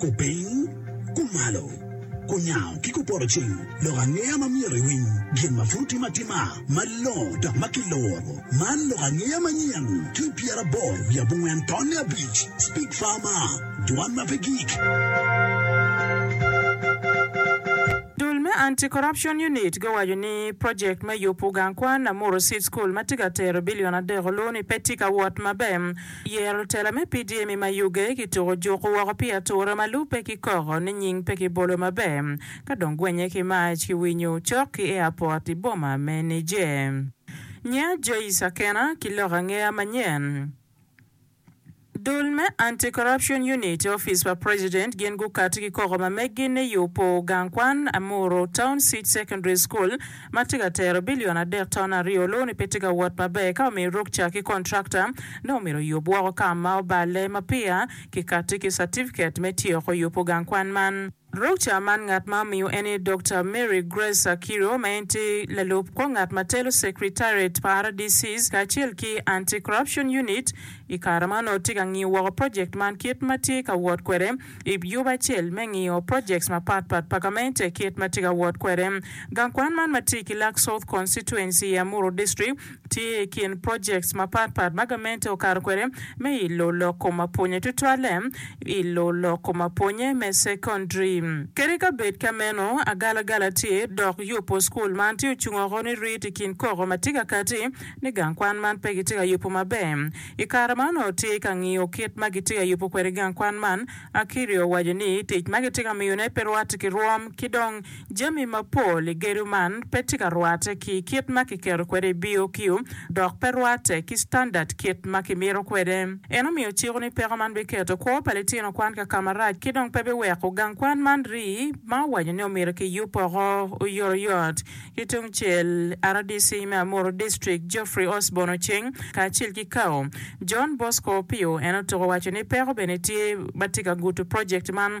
Kupiny, kumalo, kunyango ki kupoto cing lok angeya ma myero iwiny gin ma pud otim atima malongo dok ma kiloro. Man lok angeya manyen ki i pyeraboro wiye abongwen tonne abic. Speak Farmer. Dwan ma pe gik. Dul me Anti Corruption Unit guwaco ni project me yubu gang kwan Namuru Seed School ma tye ka tero billion adek olu ni pe tye ka wot maber. Yero tela me PDM i Mayuge ki tuku juku woko pi ature ma lube ki koko ni nying pe ki bolo maber ka dong gwenye ki mac ki winyu cok ki airport i boma me Niger. Nya Joyce Akena ki lok angeya manyen. Dul me Anti-Corruption Unit i opic pa president gin gukati ki koko ma meggi ni yubo gang kwan Amuru Town City Secondary School ma tye ka tero billion adek ton aryo luni pe tye ka wot maber ka omiyo rukca ki contractor ne omyero oyub woko ka ma oballe ma peya kikati ki certificate me tyeko yubo gang kwan man. Dokta man ngat ma omiyo en ni Dokta Mary Grace Akiro ma en tye lalub kor ngat ma telo Secretariat pa RDCs kacel ki Anti-Corruption Unit i kare ma onongo tye ka ngiyo woko project man kit ma tye ka wot kwede i yubu acel me ngiyo projects mapat pat pa gamente kit ma tye ka wot kwede. Gang kwan man ma tye i Kilak South Constituency i Amuru District Tye i kin projects mapat pat ma gamente okato kwede me ilo lok kom apwonye tutwalle ilo lok kom apwonye me secondary. Kadi ka bed ka meno, agalagala tye dok yubo school man tye ocung oko ni rit i kin koko ma tye ka kati ni gang kwan man pe gitye ka yubo maber. I kare ma onongo tye ka ngiyo kit ma gitye ka yubo kwede gang kwan man, Akirio owaco ni tic ma gitye ka miyone pe rwate ki rwom ki dong Jami mapol i gedo man pe tye ka rwatte ki kit ma kiketo kwede i BOQ dok pe rwatte ki standard kit ma kimito kwede. En omiyo ciko ni peko man biketo kwo pa litino kwan ka ka marac ki dong pe biweko gang kwan man rii ma owaco ni omyero kiyub woko oyotoyot. Ki tung cel, rdc me Amuru District, Geoffrey Osborn Oceng kacel ki Cao. John Bosco Opio en otuko waco ni peko bene tye ma tye ka gudo project man.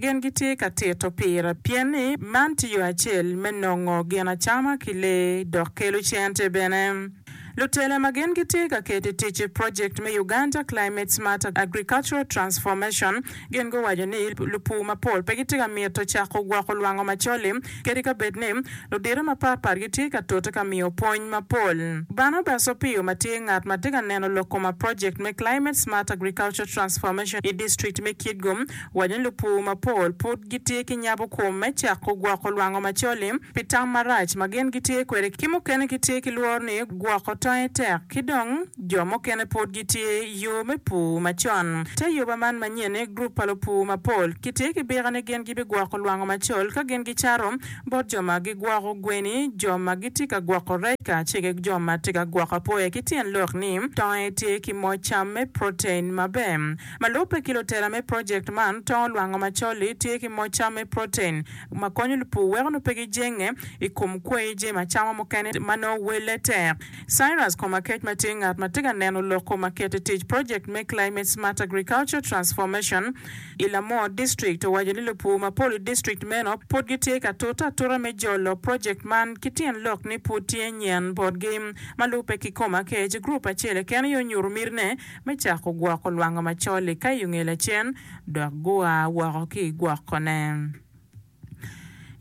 Gin gitye ka tito pira pien ni man tye yo acel me nongo gin acama ki lee dok kelo cente bene. Lutele ma gin gitye ka keto i tic project me Uganda Climate Smart Agricultural Transformation gin guwaco ni lupur mapol pe gitye ka mito cako gwoko lwango macol-li kadi ka bed ni ludito mapat pat gitye ka tute ka miyo pwony mapol. Barnabas Opiyo ma tye ngat ma tye ka neno lok kom a project me Climate Smart Agricultural Transformation i district me Kitgum, Wanya lupur mapol pud gitye ki nyabo kwom me cako gwoko lwango macol-li pi tam marac ma gin gitye kwede ki mukene gitye ki lworo ni gwoko tonge tek ki dong jo mukene pud gitye yo me pur macon. Te yoba man manyen ni grup pa lupur mapol kitye ki bika ni gin gibigwoko lwango macol ka gin gicato bot jo ma gigwoko gweni, jo ma gitye ka gwoko rec kacel ki jo ma tye ka gwoko apoya ki tyen lok ni tonge tye ki moc cam me protein maber. Ma lubbe ki lutela me project man, tongo lwango macol-li tye ki moc cam me protein ma konyo lupur weko nongo pe gijenge i kom kweyo jami acama mukene ma nongo welle tek. Cyrus Komakech ma tye ngat ma tye ka neno lok kom aket i tic project me Climate Smart Agriculture Transformation i Lamor District owaco ni lupur mapol i district meno pud gitye ka tute atuta me jolo project man ki tyen lok ni pud tye nyen botgi. Ma lubbe ki Komakech, group acel keken aye onyuto mitine me cako gwoko lwanga macol i Kayungee Lacen dok gua woko ki i gwokone.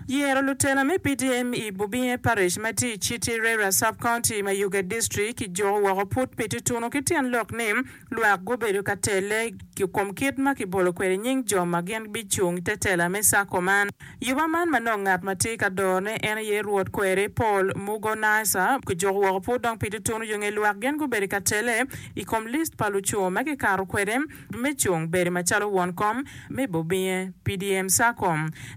Yero lutela me PDM i Bubinge Parish ma tye i Citi Reira Sub-County, Mayuge District kijuko woko pud pi tutunu ki tyen lok ni lwak gubedo ka telle i kom kit ma kibolo kwede nying jo ma gin bicung i te tela me Sacco man. Yuba man ma nongo ngat ma tye ka dorone en aye Rwot kweri, Paul Mugo Nicer, kijuko woko pud dong pi tutunu yo nge lwak gin gubedo ka tele i kom list pa luco ma kikato kwede me cung bedo macalo won kom me bobinge. PDM Sacco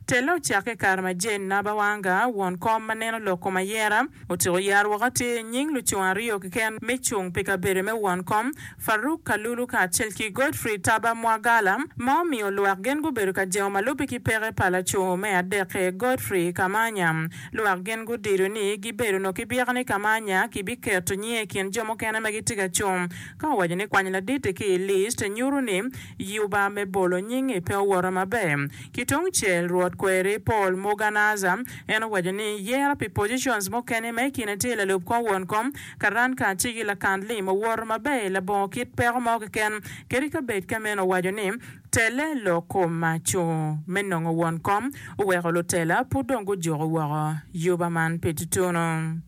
telle ocakke i kare ma Jane Nabawanga, won kom ma neno lok kom ayera, otyeko yaro woko atir nying luco aryo keken me cung pi kabedo me won kom Farouk Kalulu kacel ki Godfrey Taba Mwagala, ma omiyo lwak gin gubedo ka jengo ma lubbe ki peke pa laco me adekke, Godfrey Kamanya. Lwak gin gudido ni gibedo onongo ki byeko ni Kamanya kibiketo nyinge i kin jo mukene ma gitye ka cung, ka owaco ni kwanyo laditi ki i list nyuto ni yuba me bolo nyingi pe owoto maber. Ki tungcel, Rwot Kweri Paul Muganaaza, en owaco ni yero pi positions mukene ma i kine tye lalub kor won kom, Karan ka cigi lakan lim owoto maber i labongo kit peko mo keken, kadi ka bed ka meno owaco ni, Tele lok koma co me nongo won kom oweko lutela pud dong gujuko woko yuba man pi tutunu.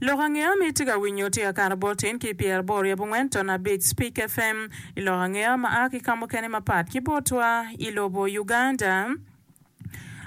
Lok angeya ma itye ka winyo tye kakato bot tin ki pyera boro i abongwen ton abic Speak FM, i lok angeya ma a ki ka mukene mapat ki botwa i lobo Uganda.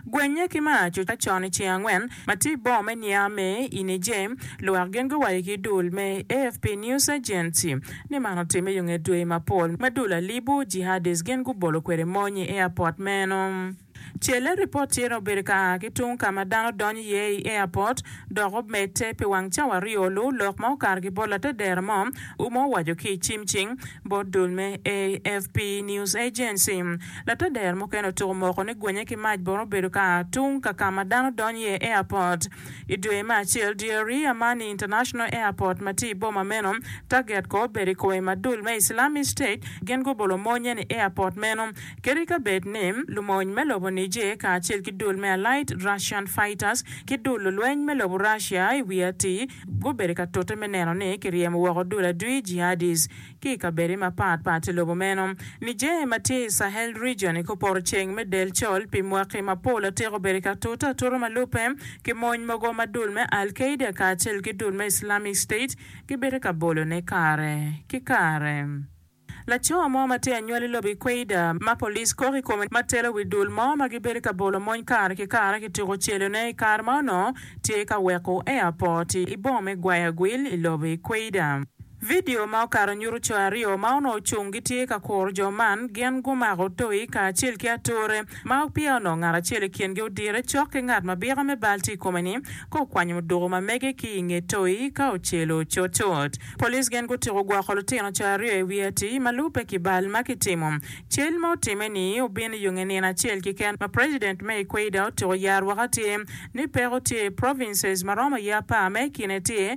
Gwenye ki maa coca con iceng angwen ma tye ibor me Niamey i Niger, lwak gin guwaco ki dul me AFP News Agency ni man otimme yo nge dwe mapol ma dul alibu jihadist gin gubolo kwede mony i airport meno. Celle ripot tye ni obedo ka a ki tung kama dano donyo iye i airport dok omedde pi wang cawa aryo lu lok ma okato ki bot latedera mo u ma owaco ki i cimcing bot dul me AFP News Agency. Latader mukene otuko moko ni gwenye ki mac bot obedo ka tung ka ka ma dano donyo iye, airport. I dwe me acel dyeri, Amani International Airport ma tye i boma meno, target kor obedo i kome ma dul me Islamic State gin gubolo monnye ni airport meno keto i kabedo ni lumony me lobo Niger kacel ki dul me Allied Russian Fighters ki dul lulweny me lobo Russia i wi atir gubedo ka tute me neno ni kiryemo woko dul adwi, jihadis. ki i kabedde mapat pat i lobo meno. Niger ma tye i Sahel Region i kor poto ceng me del col pi mwaki mapol atika obedo ki atuta atuta ma lubbe ki mony mogo ma dul me Al Qaeda kacel ki dul me Islamic State gibedo ka bolone kare ki kare. Laco mo ma tye anywal i lobo Equator ma police kok i kome ma telo wi dul mo ma gibedo ka bolo mony kare ki kare kituko celone i kare ma onongo tye ka weko airport i boma me Guayaguil i lobo Equator. Vidio ma okato nyuto co aryo ma onongo cung gitye ka kuro jo man. Gin gumako toyi kacel ki ature, ma peya onongo ngat acel i kingi odire cok ki ngat ma bika me bal tye i kome-ni ka okwanyo muduku ma mege ki i nge toyi ka ocelo cutcut. Police gin gutyeko gwoko lutino co aryo i wi atii ma lubbe ki bal ma kitimo. Cal ma otimme ni obino i yonge nino acel keken ma President me Equator otyeko yaro woko tye ni peko tye i provinces ma romo aye apar ma i kine tye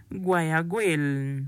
gwayo agwel.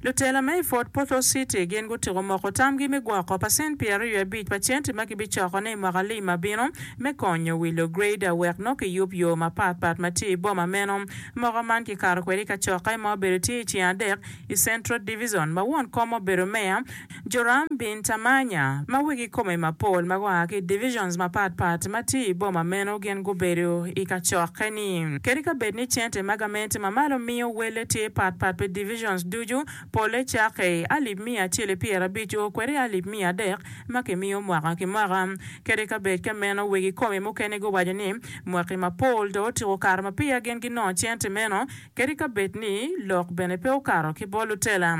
Lutela ma i Fort Portal City gin gutyeko moko tamgi me gwoko pacent pyer aryo i abic pa centi ma kibicokone i mwaka lim ma bino me konyo wilo greda wek nongo kiyub yo mapat pat ma tye i boma meno. Moko man kikato kwede i kacokke ma obedo tye i ceng adek i Central Divizon, ma won kom obedo meya, Joram bin Tamanya, ma wegi kome mapol ma gua ki i divizons mapat pat ma tye i boma meno gin gubedo i kacokke-ni. Kadi ka bed ni cente ma gamente ma malo miyo welle tye pat pat pi divizons ducu, Pole cakke i alip miya acel i pyera abic o kwede i alip miya adek ma ki miyo mwaka ki mwaka. Kadi ka bed ka meno weg i kome mukene gu waco ni mwaki ma pol do otuko kare ma peya gin gi nongo cente meno kadi ka bed ni lok bene pe okato ki bol lutela.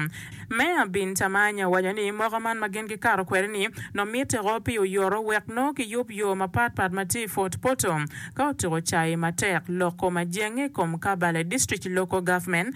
Meya Bin Tamanya owaco ni mwaka man ma gin gi kato kwede ni nongo mitte ko pi oyoto wek nongo ki yub yo ma pat pat ma tye i Fort Portal ka otuko cayi matek loko majenge i kom Kabale District Local Government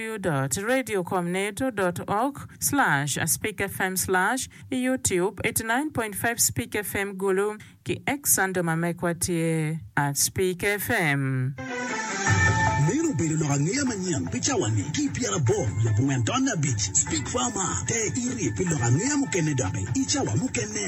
www dot radio com neto dot org slash spik fm slash i youtube eighty nine point five spik fm gulu ki X under ma mekwa tye at spik fm. Meno obedo lok angeya manyen pi cawa-ni ki i pyeraboro leb ongwen tonne abic. Spik fm a te iri pi lok angeya mukene doki i cawa mukene.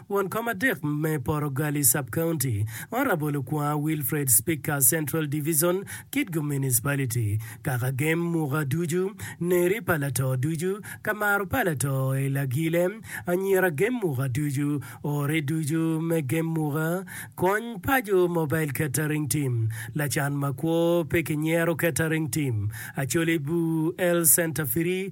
Won kom adek me Porogali Sub-County, Honourable Okwonga Wilfred Speaker Central Division, Kitgum Municipality, Kaka gem muka ducu, neri pa lato ducu, ka maro pa lato i lagile, anyira gem muka ducu, ore ducu me gem muka, kony paco Mobile Catering Team, lacan makwo pe kinyero Catering Team, Acholi Bur Health Centre Free,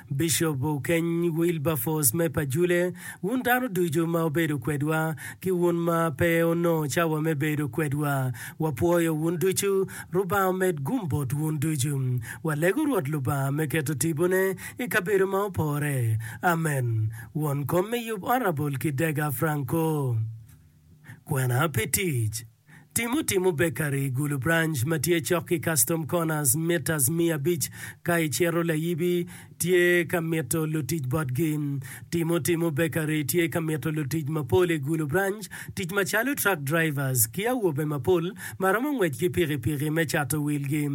Bishop Okeny Wilberforce me Pajule, wun dano ducu ma wubedo kwedwa, ki wun ma pe wunongo cawa me bedo kwedwa, wapwoyo wun ducu. Lubanga omed gum bot wun ducu. Walego Rwot Lubanga me keto tibone i kabedo ma opore. Amen. Won kom me yub Honourable Kidega Franco. Kwena pi tic. Timo timo bekari i gulu branch ma tye cok ki Custom Corners mitas miya abic ka icito layibi tye ka mito lutic botgi. Timo timo bekari tye ka mito lutic mapol i gulu branch tic macalo truck drivers ki awobe mapol ma romo ngwec ki pikipiki me cato wilgi.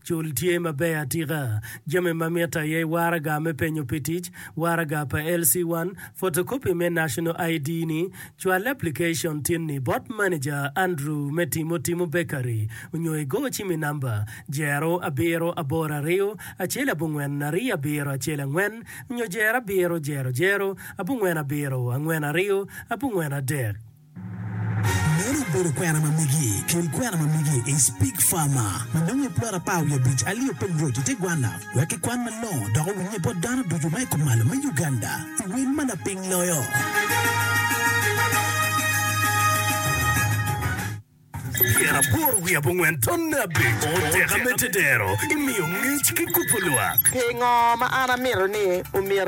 Cul tye maber atika. Jami ma mitte aye waraga me penyo pi tic, waraga pa LC1, photocopy me National ID ni, Cwal aplikacon tin-ni bot maneja Andrew me Timotimo Bakery onyo igo cim i namba, Jero abiro aboro aryo acel abongwen aryo abiro acel angwen onyo jero abiro jero jero abongwen abiro angwen aryo abongwen adek. Meno obedo kwena ma migi. Kel kwena ma migi i Speak Farmer ma nongo i plot apar wiye abic, Alio Peng Road, i te gwanna. Wek ikwan malongo dok owinye bot dano ducu ma i kumalo me Uganda i wel ma lapiny loyo. Pyera aboro wiye abongwen tonne abic oteka me tedero imiyo ngec ki kubo lwak. Pingo ma an amito ni omyero